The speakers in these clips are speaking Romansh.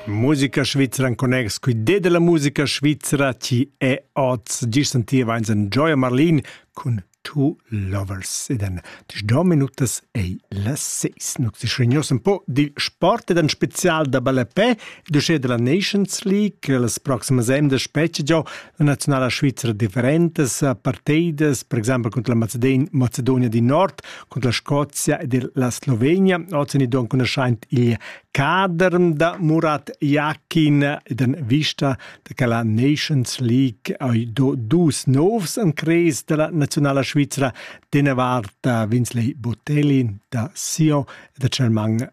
Musica svizra in connex cui de della musica svizra chi è oz gis sentiva eins en Gioia Marlin cun Two Lovers ed en dis do minutas ei la seis nux ti schregnos un po di sport ed en spezial da ballepè du sche della Nations League las proximas emda specie già la nazionala svizra differentas parteidas per exempel contro la Mazedon Macedonia di Nord cun la Scozia ed la Slovenia. Ozendi enconuschaint il cader da Murat Jakin ed en vista da che la Nations League hai do dus novs en cres della nazionala svizra. Dene vart Vinsley Botelli da Sio e da German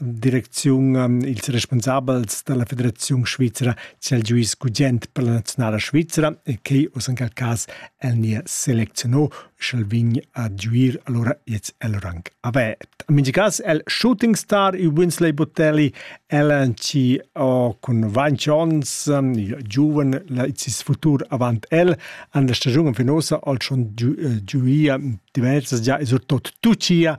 direcziun ils responsabels dalla Federaziun Svizra c'el giuis gugent per la nazionala svizra e che us in quel cas el nie seleziono sch'el vin a giuir allora jetzt el rang avert. In mingi cas el shooting star i Winsley Botelli el ci o cun Vain Jones il giuven la cis futur avant el an der stagiun finosa al schon giuia diversas già esortot tucia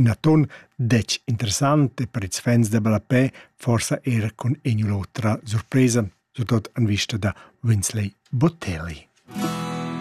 Ün atun detg interessant e per ils fans da ballapè forsa er cun in'u l'otra surpresa, surtot en vista da Winsley Botelli.